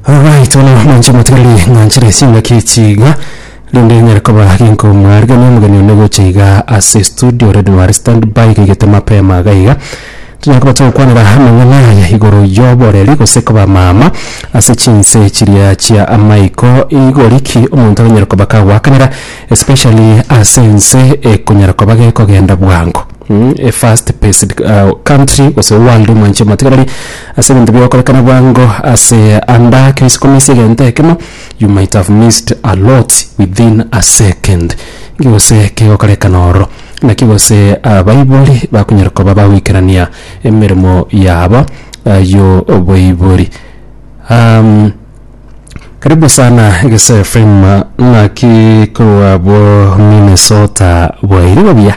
Alright, bono mwanche motigareri ng'anchire chingaki chiga rinde nyare koba ginkomwarigania omogeni one gocha iga ase studio already ware stand by gaigete mapema iga iga tunyare koba togokwanera amang'ana aya igoro y'oboreri gose koba mama ase chinse chiria chia amaiko igori ki omonto aranyare koba kagoakanera especially ase ense ekonyara koba gekogenda bwango mm, a fast paced uh, country gose world mwanche motigareri Ase ebinto bigokorekana bwango ase anda kera isiko maiso egento ekemo, you might have missed a lot within a second. Nki gose kegokorekana oro? Naki gose abaibori bakonyara koba bagoikerania emeremo yabo y'oboibori. Karibu sana Egesoya FM, naki korwa abwo Minnesota bwaire buya?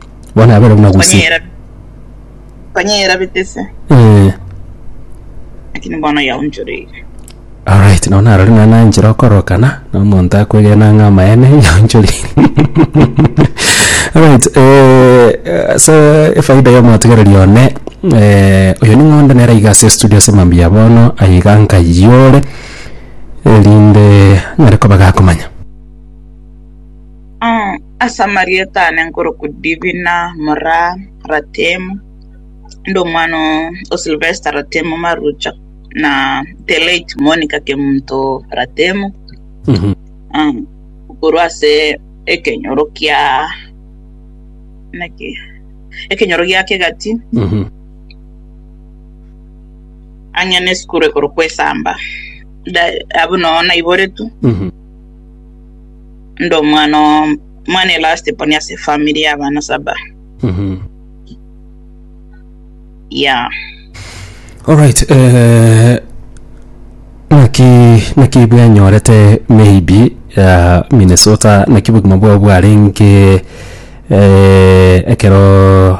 Bono abere buna gose. Konyera konyera bitese Eh, lakini bono yaonchoreire. alright, nao narore naye nanchire okorokana na omonto akwegena ng'a amaene yaonchori. Alright, eh, ase efaida y'omotigereri one, eh, oyo ning'onde nere iga ase estudio ase mambia bono, aye iga nkayore erinde nyare koba gakomanya. Ase amarieta aane nkorokwa Divina mora Ratemu, inde omwana o Silvester Ratemu Marucha, na the late Monica Kemunto Ratemu, korwa ase ekenyoro kia naki ekenyoro gia Kegati, ang'e na esukuru ekorokwa Esamba, abwo noo naiboretwe. inde omwana omwana elast born ase efamiri y'abana saba Mhm. ya Alright, eh, naki naki bwenyorete maybe ya Minnesota naki bogima bwao bwarenge eh, ekero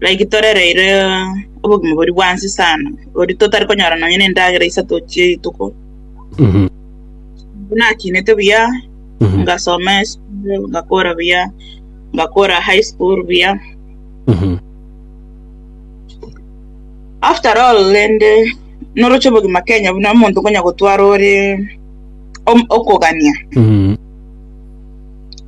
Like torereire obogima boria bwa nse sana, boria totari konyora nonya nendagera isato chirituko. Nabwo nakinete buya, ngasoma esukuru, ngakora buya, ngakora high school buya. After all rende noroche obogima Kenya buna omonto konya gotwara ore okogania.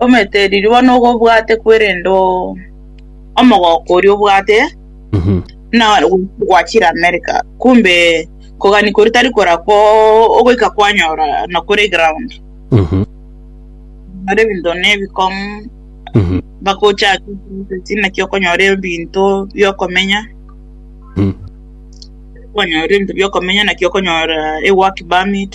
Omanyete riria bono obwate kwerende omogoko oria obwate buna gwachire America kumbe kogania koria tari korakwo ogoika kwanyora nokore eground nokore ebinto ne ebikong'u mpaka ochake eprocess naki okonyora ebinto bia okomenya kwanyora ebinto bia okomenya naki okonyora ework permit.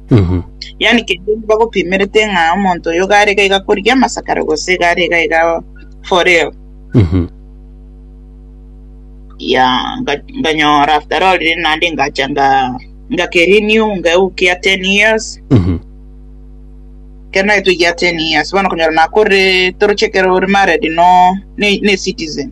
Yaani keria bagopimerete ng'a omonto oyo iga arega iga korigia amasakara gose iga arega iga for real. Ya nga- nganyora after all riri naende ngacha nga ngakerenew ngeukia ten years ekero naetwe egia ten years bono okonyora nakorire toroche ekero ore married no ne ne citizen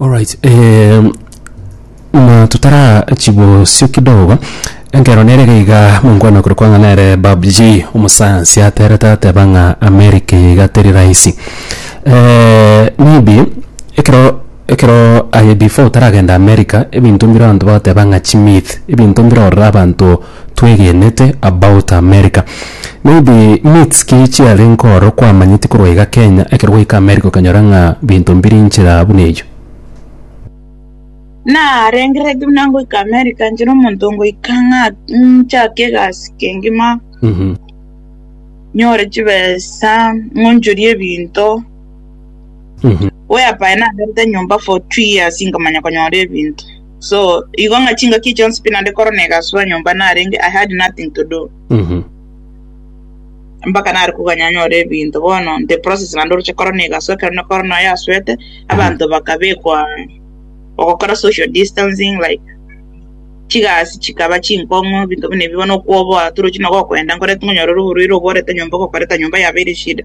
Alright eh, na tutara chibosio kidogo enkero nere gaiga mongwana kore kwang'a nere babji omosayansi aterete ateba ng'a amerika iga teri rahisi eh, maybe ekero ekero aye before otaragenda amerika ebinto mbire abanto bagateba ng'a chimyth ebinto mbire orora abanto Twegenete about America. Maybe myths ki chiare nkooro kwamanyeti korwa iga Kenya ekero gwaika America okanyora ng'a binto mbiri nchera buna eyio? Narengeretie buna ngoika America nchire omonto ngoika ng'a nchake egasi kengima nyore chibesa ng'onchorie ebinto whereby naberete nyomba for two years nkamanya konyora ebinto. So igo ng'a chingaki chionsi pi naende korwa negaswa nyomba narenge, I had nothing to do. Mpaka nare koganya nyore ebinto bono the process naende oroche korwa negaswa ekero ne Corona yaswete abanto bakabekwa ogokora social distancing like chigasi chikaba chinkong'u ebinto buna ebi bono okwoboa torochi na gokoenda nkore ng'a onyore oborwaire obworete nyomba ogokoreta nyomba yaba ere shida.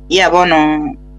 Yeah bono.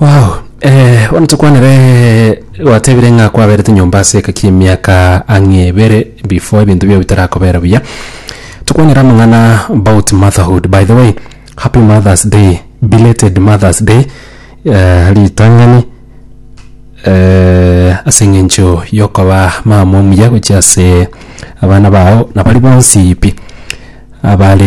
Waw bono tokwanere gwatebire ng'a kwaberete nyomba ase egeka kia emiaka ang'e ebere before ebinto biao bitarakobera buya tokwanera amang'ana about motherhood by the way happy mothers day belated mothers day eh, ritang'ani eh, ase eng'encho yokoba mama omuya gochia ase abana bao na bari bonsi pi abare